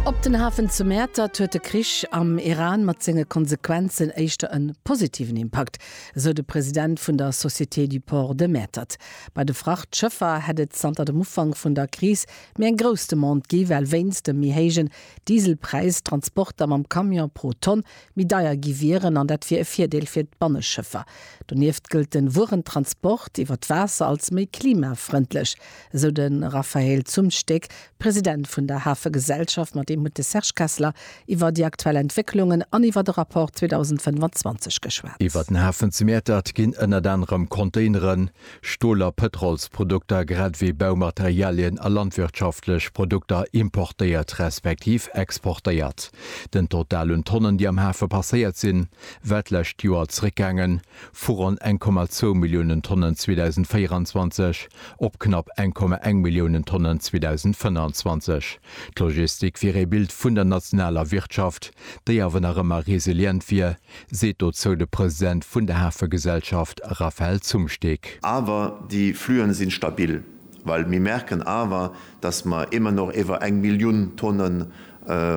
Op den Hafen zu Mäertert huet de Krich am Iran mat senge Konsequenzen éischter en positiven Impakt, esou de President vun der Société du Port de Mäertert. Bei de Frachtschëffer hätt et zanter dem Ufank vun der Kris méi eng grouss Demande gi well wéinst dem méi héijen Dieselpräis d'Transporter mam Camion pro Tonn méi deier gi wieren an dat wier e Virdeel fir d'Banneschëffer. Donieft gëllt de Wuerentransport iwwer d'Waasser als méi klimafrëndlech. esou de Raphaël Zumsteeg, President vun der Hafegesellschaft. Mat him huet de Serge Kessler iwwer déi aktuell Entwécklungen an iwwer de Rapport 2025 geschwat. Iwwer den Hafen zu Mäertert ginn ënnert anerem Containeren, Stol a Pëtrolsprodukter, grad ewéi Baumaterialien a landwirtschaftlech Produkter importéiert respektiv exportéiert. Den Total un Tonnen, déi am Hafe passéiert sinn, war d'lescht Joer zeréckgaangen, vu ronn 1,2 Milliounen Tonnen 2024 op knapp 1,1 Milliounen Tonnen 2025. D'Logistik wier ee Bild vun der nationaler Wirtschaft, déi awer nach ëmmer resilient wier, seet dozou de President vun der Hafegesellschaft Raphaël Zumsteeg. Awer déi Fluen sinn stabil, well mir merken awer dass mer émmer nach éwer eng Millioun Tonnen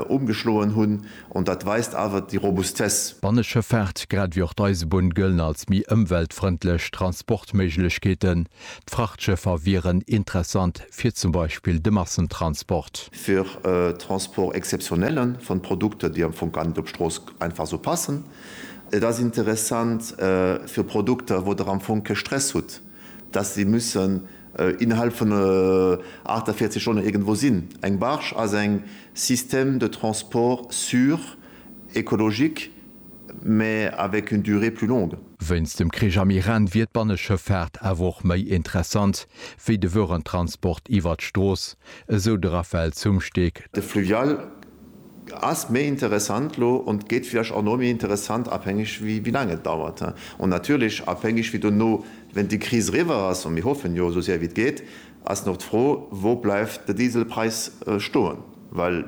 umgeschloen hunn, an dat weist awer déi Robustesse. D'Banneschëffaart, grad ewéi och d'Eisebunn, gëllen als méi ëmweltfrëndlech Transportméiglechkeeten. D'Frachtschëffer wieren interessant fir zum Beispill de Massentransport. Fir Transport exceptionnelle von Produkten, déi am Fong gar net op d'Strooss einfach esou passen. Et ass interessant fir Produkter, wou Der am Fong kee Stress hutt, dass se mussen innerhalb vun 48 Stonnen iergendwou sinn. Eng Barge ass eng système de transport sûr, écologique, mais avec une durée plus longue. Wéinst dem Krich am Iran wier d'Banneschëffaart awer och méi interessant wéi de Wörentransport iwwert d'Strooss, esou de Raphaël Zumsteeg. De Fluvial Ass méi interessant lo und gét vielleicht auch no méi interessant abhängig wi wi lang et dauert he und natürlich abhängig wi dono wenn di Kris eriwer ass, an mir hoffen jo esou séier wi et gét, ass noch d'Fro wou bleiwt de Dieselpreis stoen, well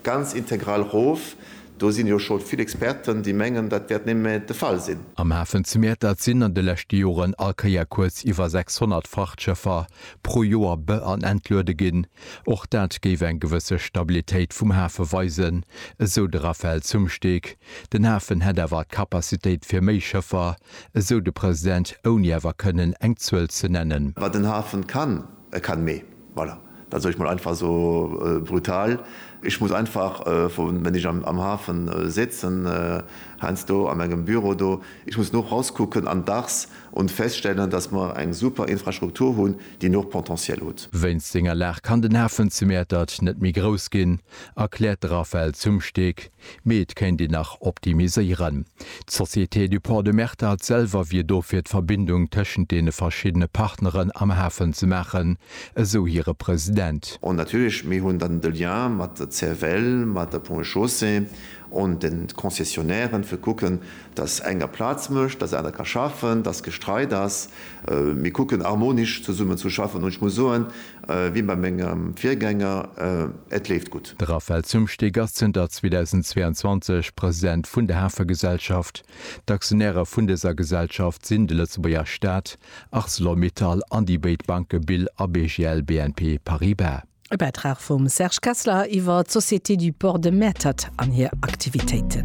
ganz integral rof, do sin jo schon vill Experten di mengen dat wärt némme de Fall sin. Am Hafen zu Mäertert sinn an de leschte Joren all Kéier kuerz iwwer 600 Frachtschëffer pro Joer be an entluede ginn. Och dat géif eng gewësse Stabilitéit vum Hafe weisen, esou de Raphaël Zumsteeg. Den Hafen hätt awer d'Capacitéit fir méi Schëffer, esou de President, ouni awer kënnen eng Zuel ze nennen. Wat den Hafen kann, e kann méi. Voilà, dat soll ech mol einfach esou brutal. Ech muss einfach, wann ech am Hafen sitzen, heiansdo a mengem Büro do, ech muss no rauskucken an dacks Und feststellen, dass mer eng super Infrastruktur hunn, déi nach Potentiel hutt. Wéinst senger Lag kann den Hafen zu Mäertert net méi grouss ginn, erkläert de Raphaël Zumsteeg, mee et kéint een nach optimiséieren. D'Société du Port de Mäertert selwer wier do fir d'Verbindung tëschent deene verschiddene Partneren am Hafen ze maachen, esou hire President. Und natierlech, mir hunn dann de Lien mat der CFL, mat der Ponts et Chaussées und den Concessionären, fir kucken, dass eng a Plaz mécht, dass aner ka schaffen, dass Gestreit ass, mir kucken harmonisch zesummen zu schaffen. An ech muss soen, wéi bei mengem Virgänger, et leeft gutt. De Raphaël Zumsteeg ass zënter 2022 President vun der Hafegesellschaft. D'Aktionäre vun dëser Gesellschaft sinn de Lëtzebuerger Staat, Arcelor-Mittal an déi béid Banke Bill a BGL-BNP Paribas. E Bäitrag vum Serge Kessler iwwer d'Société du Port de Mäertert an hir Aktivitéiten.